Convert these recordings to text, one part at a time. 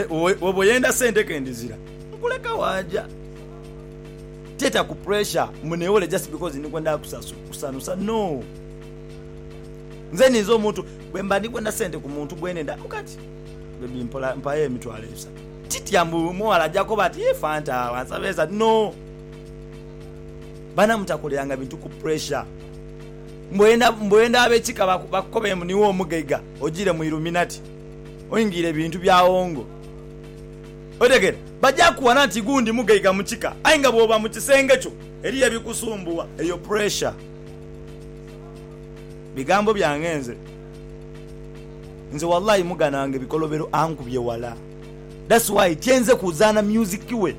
Woba oyenda sente kendizira nkuleka waja teta ku pressure mbu newole just because ndikwenda kusanusa no nze ninze omuntu bwemba ndikwenda sente ku muntu gwenenda kukati baby mpola mpayo emitwalo esatu titya mbu omughala aja koba ati yii fanta wansaba esatu no bana mutakoleranga bintu ku pressure mbu oyenda abekika bakukobe mbu niwe omugaiga ojire mu illuminati. oingiire bintu bya hongo. Otegera? Baja kuwana nti igu ndi mugaiga mu kika aye nga bwoba mu kisenge kyo eriyo ebikusumbuwa. Eyo pressure. Bigambo byange nze. Nze walayi mugana wange bikolobero ankubye wala that's why tyenze kuzana music we.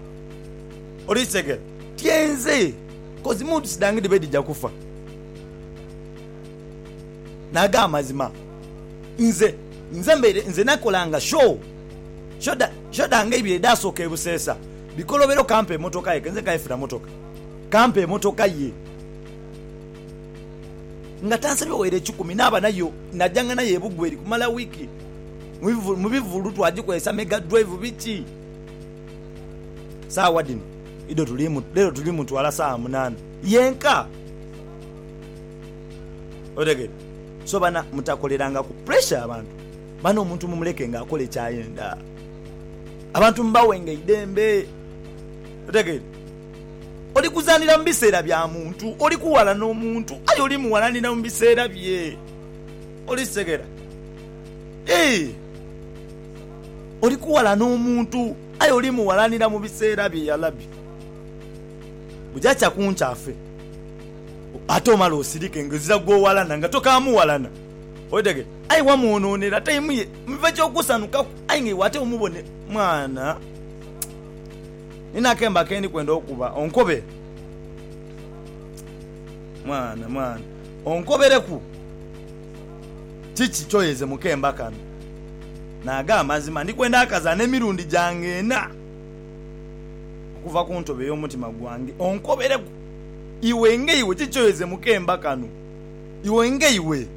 Oli kitegera? Tyenze coz moods dhange dhibe dhija kufa. n'ag'amazima. Nze, nze mbaire, nze nakolanga show, show dha, show dhange eibiri edhaasooka e Buseesa, Bikolobero kampa emotoka ye, kenze nkayefuna motoka, kampa emotoka ye, nga tansabye waire ekikumi, naaba nayo, najanga nayo e Bugweri kumala wiiki, mu bivulu, mu bivulu twagikozesa mega drive biki. Saawa dhino, Ido tuli mu, lero tuli mu ntwala saawa munaana yenka. otegere so bana mutakolerangaku pressure abantu bana omuntu mumuleke nga akole kyayenda abantu mubawenga eidembe otegere oli kuzanira mubiseera bya muntu oli kuwalana omuntu aye oli muwalanira mubiseera bye oli kitegera eeh oli kuwalana omuntu aye oli muwalanira mubiseera bye yalabi bujakya kunkya afe. ate omale osirike nga ozira gw'owalana nga tokaamughalana. Okitegera? Aye wamwonoonera taimu ye, miva eky'okusanukaku, aye nga iwe ate omubone. Mwana, nina akemba ke ndi kwenda okukuba onkobe. Mwana, mwana, onkobereku. Kiki ky'oyeze mu kemba kano? Ni ag'amazima, ndi kwenda akazaana emirundi gyange ena okuva ku ntobo ey'omutima gwange. Onkobereku. Iwe ng'eiwe kiki kyoyeze mu kemba kano? Iwe ng'eiwe!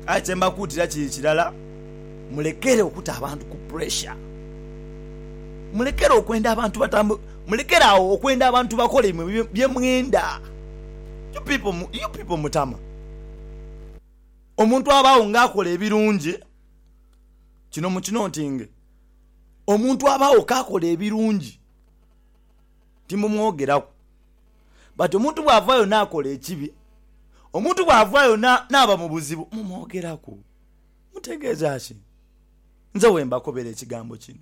Aye kye mbakuutira kiri kirala, mulekere okuta abantu ku puresha. Mulekere okwenda abantu batamb, mulekere agho okwenda abantu bakole imwe bye mwenda. You people, you people mutama. Omuntu abaagho ng'akola ebirungi, kino mukinotinge, omuntu abaagho k'akola ebirungi. timumwogeraku. But omuntu bw'avaayo n'akola ekibi, omuntu bw'avaayo n'aba mu buzibu, mumwogeraku. Mutegeeza ki? Nze wembakobera ekigambo kino.